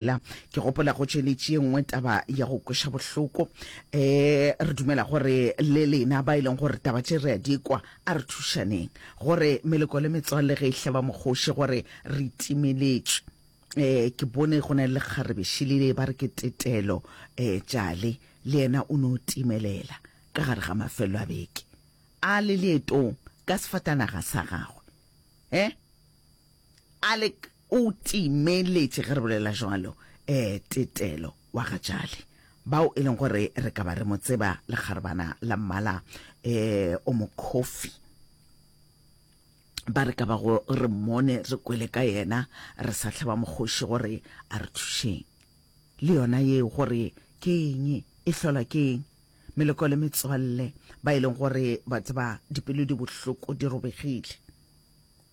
La, ke gopola go tšweletše ye nngwe taba ya go kweša bohloko. Um re dumela gore le lena ba e leng gore taba tše re a di kwa, a re thušaneng gore meleko le metswalle ge e hleba mokgoši gore re timeletšwe. Um ke bone go na le lekgarebe šelile ba re ke tetelo. Um tšale le yena o no timelela ka gare ga mafello a beke a le leetong ka sefatanaga sa gagwe. Um a le O timeletše ge re bolela jwalo, ee, Tetelo wa ga Jali, bao e leng gore re ka ba re mo tseba, lekgarebana la mmala eh, o mokhofi. Ba re ka bago re mmone, re kwele ka yena, re sa hlaba mokgoši gore a re thušeng. Le yona yeo gore ke eng, e hlolwa ke eng? Meloko le metswalle, ba e leng gore ba tseba dipelo di bohloko, di robegile.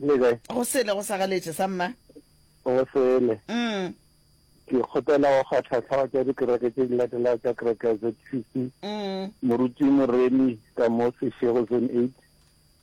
Le kae? Go sele go sa galetše sa mma. Go sele. Mm. Ke kgopela go ga tlhatlhawa tša dikereke tše di latelago tša kereke ya ZCC. Mm. Moruti Moremi ka mo Seshego Zone 8.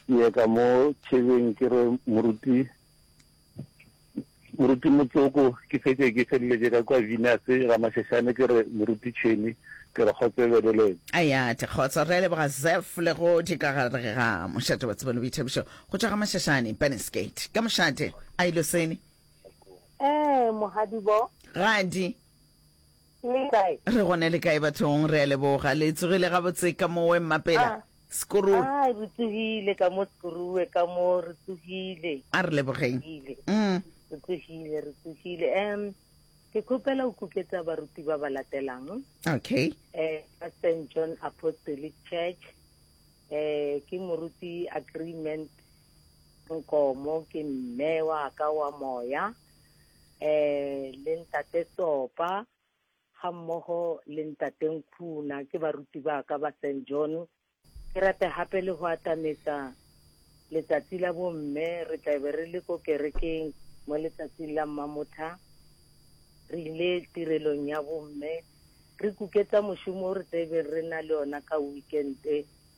Ke ye ka mo Tšhebeng ke re moruti Moruti Motsoko, Ke fetše ke feleletše ka kwa Venus Ramašešane ke re Moruti Tšhweni ke re kgotso e be le lena. Ayate, Kgotso re a leboga Zeph le go di ka gare ga mošate wa tsebo le boithabišo go tšwa ga Mashashane, Burnies Gate ka mošate. Ailoseni. Ee, Mohadibo. Gadi. Le kae? Re gona le kae bathong? Re a leboga. Le tsogile gabotse ka mo we mmapela? Ah. Skorue. Ah, re tsogile ka mo Skorue ka mo re tsogile. A re lebogeng. Mm. Re tsogile, re tsogile. Um, ke khopela o kuketsa baruti ba ba latelang. Okay. Eh, ka St. John Apostolic Church. Eh, ke moruti agreement nkomo ke mme wa ka wa moya um le ntate Tsopa ga mmogo le ntate Nkhuna ke baruti ba ka ba St John. Ke rata gape le go atametsa letsatsi la bomme re tla be re le ko kerekeng mo letsatsing la mmamotha re ile tirelong ya bomme re kuketsa mošomo o re tla be re na le ona ka weekend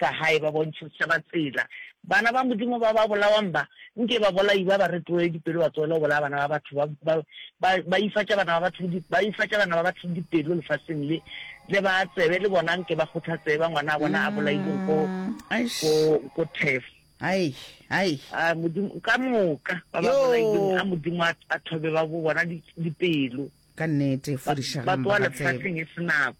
Ka gae ba bontšha setšhaba tsela. Bana ba Modimo ba ba bolawang ba, nke babolai ba ba retolele dipelo ba tlohele go bolaya bana ba batho, ba, ba, ba, ba ifatša bana ba batho, ba ifatša bana ba batho dipelo lefaseng le, le ba tsebe le bona nke ba kgothatsee ba ngwana a bona a bolailweng ko, ko, ko Turf. Hai, hai. A Modimo, ka moka, ba ba bolailweng, a Modimo a, a thobe ba bo bona di, dipelo. Ka nnete, fodišagang ba ba tsebe. Ba tloga lefaseng e se nako.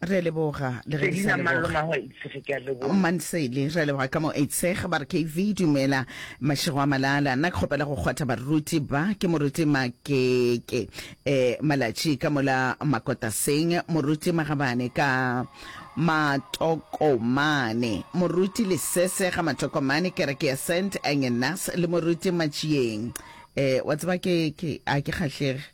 re a leboga le ge re sa Selina Mallo leboga Mago a Itshege ke a leboga. mansele re a leboga ka mo eitsheg ba re kv dumela mašego a malala nna ke kgopela go kgwatha baruti ba ke moruti makeke um malatši ka mola makotaseng moruti magabane ka matokomane moruti lesese ga matokomane kereke ya saint angenas le moruti matšieng um wa tseba ke ke a ke kgahlege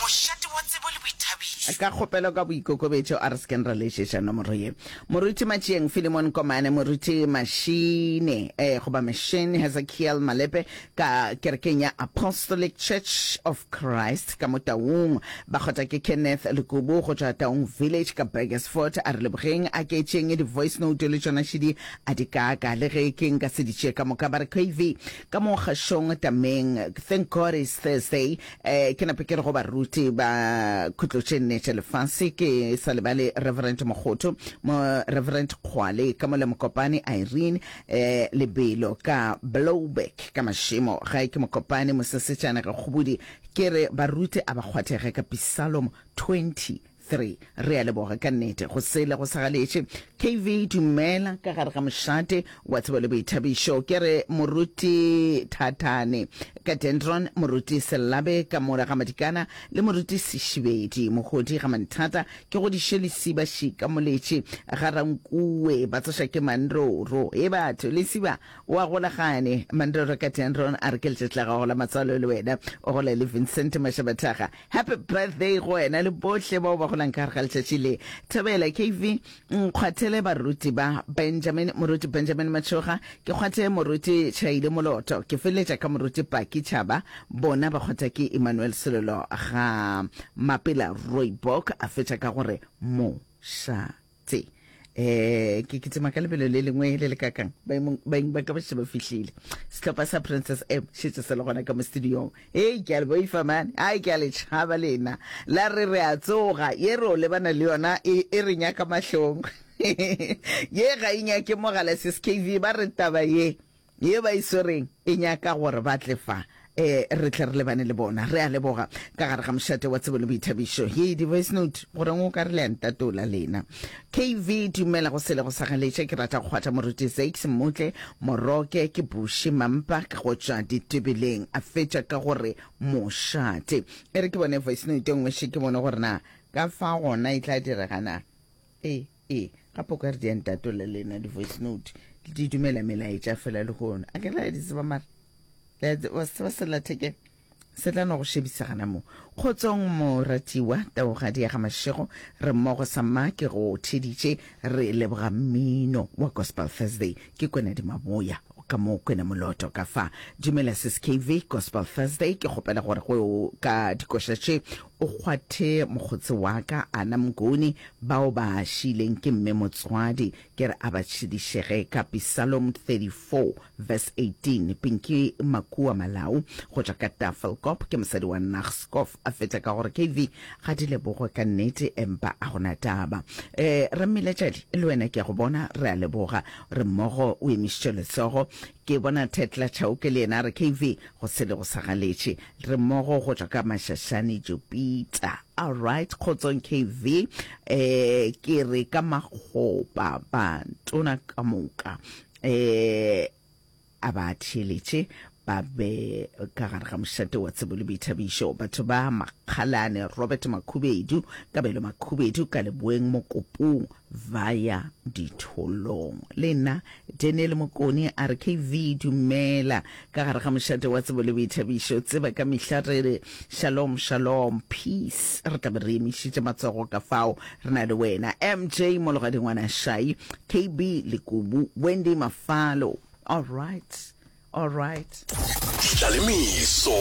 Mošate wa tsebo le boithabišo. Ka kgopelo ka boikokobetšo, a re se keng ra lešeša nomoro ye. Moruti Matšieng Filimon Komane, Moruti Machine, eh, goba Machine Hezekiel Malepe ka Kerekeng ya Apostolic Church of Christ ka mo Taung. Bakgotla ke Kenneth Lekubu go tšwa Taung Village ka Burgersfort. A re lebogeng, a ke tšeeng di voice note le tšona šidi a di kaka le ge ke nka se di tšee ka moka. Ba re KV ka mo Kgašong Tameng, thank God it's Thursday, Eh, ke nape ke re go baruti ba khutloše nnete lefase ke sa lebale reverend mokgotho mo reverend kgwale ka mola mokopane irene eh, lebelo ka blowback ka mašemo gae ke mokopane mosesetšana ge kgobodi ke re baruti a ba kgwathege ka pisalom 20 Three, Re a leboga ka nnete go sele go sa galetše. KV, Dumela, ka gare ga mošate wa tsebo le boithabišo. Ke re, Moruti Thathane ka Dendron, Moruti Sellabe ka mola ga Madikana le Moruti Sešibedi Mogodi ga Manthata, ke godiše lesiba šika moletše ga Rankuwe ba tsoša ke Mandoro. He batho, lesiba o a gola gane? Mandoro ka Dendron a re, Ke letšatši la gago la matswalo le wena o gola le Vincent Mašabathaga. Happy birthday go wena le bohle bao ba golang ka gare ga letšatši le. Thobela KV nkgwathele baruti ba Benjamin, moruti Benjamin Matshoga, ke kgwathe moruti Chaile Moloto, ke feleletša ka moruti Paki Chaba, bona ba kgwatha ke Emmanuel Selelo ga Mapela Rooibok, a fetša ka gore mo sha. tse eh ke ke tsema ka lebelo le lengwe le le kakang baeng ba ka ba sheba fihlile setlhopha sa princess m shetse se le gona ka mo studiong hey ke a le boifa man ai ke a le tšhaba lena la re re a tsoga ye re o lebana le yona e, e re nyaka mahlong ye ga e nyake mogala sis kv ba re taba ye ye ba e swereng e nyaka gore ba tle fa eh, re tle re lebane le bona. Re a leboga ka gare ga mošate wa tsebo le boithabišo. Ye di voice note gore ngo ka re le a ntatola lena. KV dumela go sele go sa galetša ke rata go kgwatha moruti Zakes Mmotle Moroke ke Bushe Mampa ke go tšwa ditebeleng a fetša ka gore mošate. E re ke bone voice note e nngwe še ke bone gore na ka fa gona e tla direga na. Ee. E, ga po ka re di a ntatola le ena di-voice note di dumela melaetša fela le gona a ke la di tseba mara wa se tseba selathekeng se tla no go šebisa gana mo kgotsong moratiwa taogadi ya ga mašego re mmogo sa mma ke go theditše re leboga mmino wa gospel thursday ke kwena dimaboya ka mo kwena moloto ka fa dumela sis kv gospel thursday ke kgopela gore go ka dikoša tše O kgwathe mokgotse wa ka, Ana Mnguni, bao ba šiileng ke mme motswadi, ke re a ba tšhediše ge ka Psalom 34 verse 18. Pinky Makua Malau go tšwa ka Tafelkop ke mosadi wa Nagskov a fetša ka gore, KV ga di lebogwe ka nnete empa a go na taba. Eh, Rammilejadi, le wena ke a go bona, re a leboga. Re mmogo o emišitše letsogo. Ke bona Tetla Chauke le yena a re, KV, go sele go sa galetše. Re mmogo go tšwa ka Mashashane, Jupita. Alright, kgotsong KV. Um, ke re ka makgopa, batona ka moka, um, a ba theeletše, ba be ka gare ga mošate wa tsebo le boithabišo. Batho ba Makgalane, Robert Makhubedu, Kabelo Makhubedu, Kaleboeng Mokopung, ba ya ditholong. Le nna Daniel Mokoni a re KV dumela ka gare ga mošate wa tsebo le boithabišo. Tseba ka mehla re re shalom shalom peace re tla be re emišitše matsogo ka fao re na le wena MJ Mologadi Ngwana Shai, KB Lekubu, Wendy Mafalo. All right. All right. Tla le meso.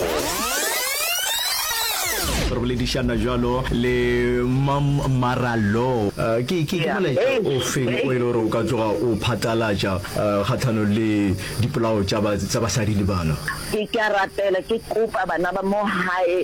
re boledišana jalo le mam maralo uh, ke ke ke molaetša o feng o e le gore o ka tsoga o phatalatša uh, kgatlhano le dipolao tsa basadi le bana ke ka rapela ke kopa bana ba mo gae